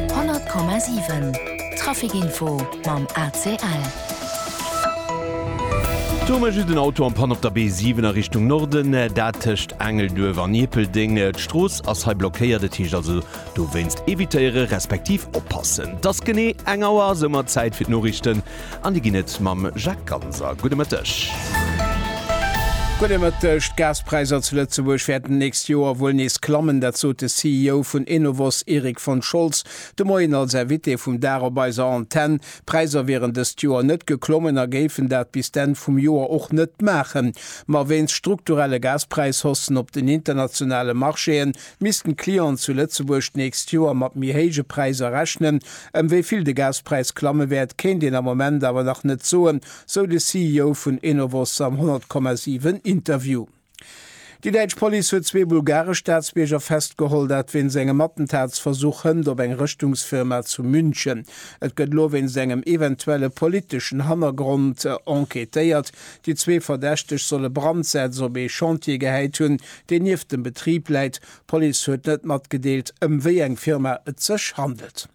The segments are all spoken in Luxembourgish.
100,7 Traficinfo mam ACL. Do hu mer just en Auto am Pann op der B7 a Richtung Norden, dat tëscht Engelduerf an Ierpeldeng. D'Strooss ass hei blockéiert, et heescht also dowéinst evitéiere respektiv oppassen. Et ass genee eng Auer, soumat Zäit fir d'Noriichten. An déi ginn et mam Jacques Ganser. Gudde Mëtteg. Gudde Mëtteg. D'Gaspräisser zu Lëtzebuerg wäerten d'nächst Joer wuel nees klammen. Dat sot de CEO vun Enovos Erik von Scholz de Moien als Invité vum Dag op eiser Antenn. D'Präisser wieren dëst Joer net geklommen a géifen dat bis d'Enn vum Joer och net maachen. Ma wéinst strukturelle Gaspräishossen op den internationale Marchéen Missten d'Clienten zu Lëtzebuerg d'nächst Joer mat méi héije Präiser rechnen? Ëm wéi vill de Gaspräis klamme wäert, kéint een am Moment awer nach net soen, sou de CEO vun Enovos am 100,7 Interview. Déi däitsch Police huet zwee bulgaresch Staatsbierger festgeholl, dat wéinst engem Attentatsversuch hënt op eng Rëschtungsfirma zu München. Et gëtt elo wéinst engem eventuelle politeschen Hannergrond enquêtéiert. Déi zwee Verdächteg solle Brandsätz op ee Chantier gehäit hunn, deen nieft dem Betrib läit. D'Police huet net matgedeelt, ëm wéi eng Firma et sech handelt.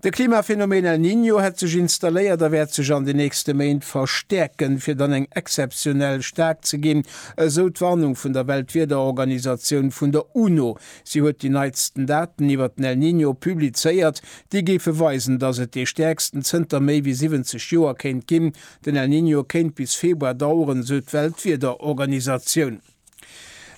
De Klimaphenomen El Niño hätt sech installéiert a wäert sech an den nächste Méint verstäerken, fir dann eng exzeptionell staark ze ginn, esou d'Warnung vun der Weltwiederorganisatioun vun der UNO. Si huet déi neitsten Daten iwwert den El Niño publizéiert, déi géife weisen, datt et dee stäerksten zënter méi wéi 70 Joer kéint ginn. Den El Niño kéint bis Februar daueren, esou d'Weltwiederorganisatioun.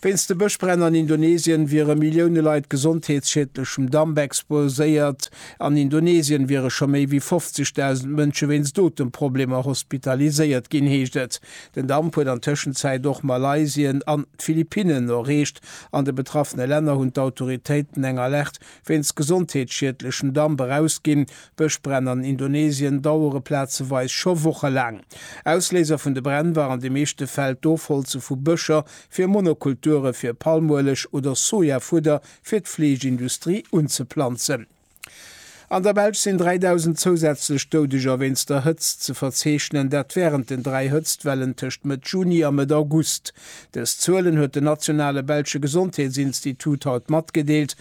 Wéinst de Bëschbränn an Indonesien wiere Millioune Leit gesondheetsschiedlechem Damp exposéiert. An Indonesien wiere scho méi wéi 50.000 Mënsche wéinst Otemproblemer hospitaliséiert ginn, heescht et. Den Damp huet an Tëschenzäit och Malaysien an d'Philippinnen erreecht. An de betraffene Länner hunn d'Autoritéiten eng Alerte Wéinst gesondheetsschiedlechen Damp erausginn. Bëschbränn an Indonesien dauere plazeweis scho Woche laang. Ausléiser vun de Bränn war an de meeschte Fäll d'Ofholze vu Bëscher fir Monokulture fir Palmueleg oder Sojafudder fir d'Fleeschindustrie unzeplanzen. An der Belsch sinn 3.000 zousätzlech Doudeger wéinst der Hëtzt ze verzeechnen, dat wärend den dräi Hëtztwellen tëscht Mëtt Juni a Mëtt August. Dës Zuelen huet den nationale belsche Gesondheetsinstitut haut matgedeelt.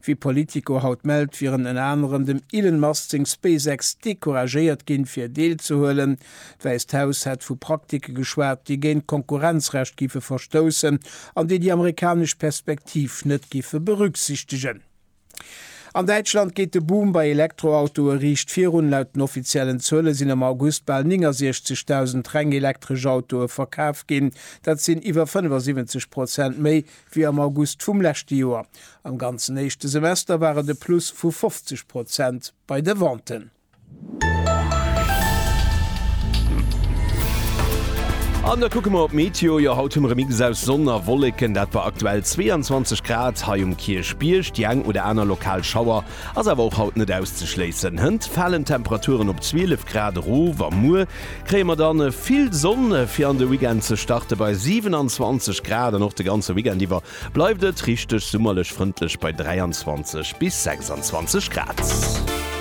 Wéi Politico haut mellt, wieren ënner anerem dem Elon Musk seng SpaceX decouragéiert ginn, fir deelzehuelen. D'Wäisst Haus hätt vu Praktike geschwat, déi géint d'Konkurrenzrecht géife verstoussen an déi déi amerikanesch Perspektiv net géife berücksichtegen. An Däitschland geet de Boom bei Elektroautoe riicht virun. Laut den offiziellen Zuele sinn am August bal 69.000 reng elektresch Autoe verkaf ginn. Dat sinn iwwer 75 Prozent méi wéi am August vum leschte Joer. Am ganzen éischte Semester war et e Plus vu 50 Prozent bei de Venten. An da kucke mer op d'Meteo. Jo, haut hu mer e Mix aus Sonn a Wolleken. Dat bei aktuell 22 Grad hei um Kierchbierg. Déi eng oder aner lokal Schauer Ass awer och haut net auszeschléissen. Hënt falen d'Temperaturen op 12 Grad erof a muer kréie mer dann vill Sonn fir an de Weekend ze starte bei 27 Grad an och de ganze Weekend iwwer bleift et richteg summerlech, frëndlech bei 23 bis 26 Grad.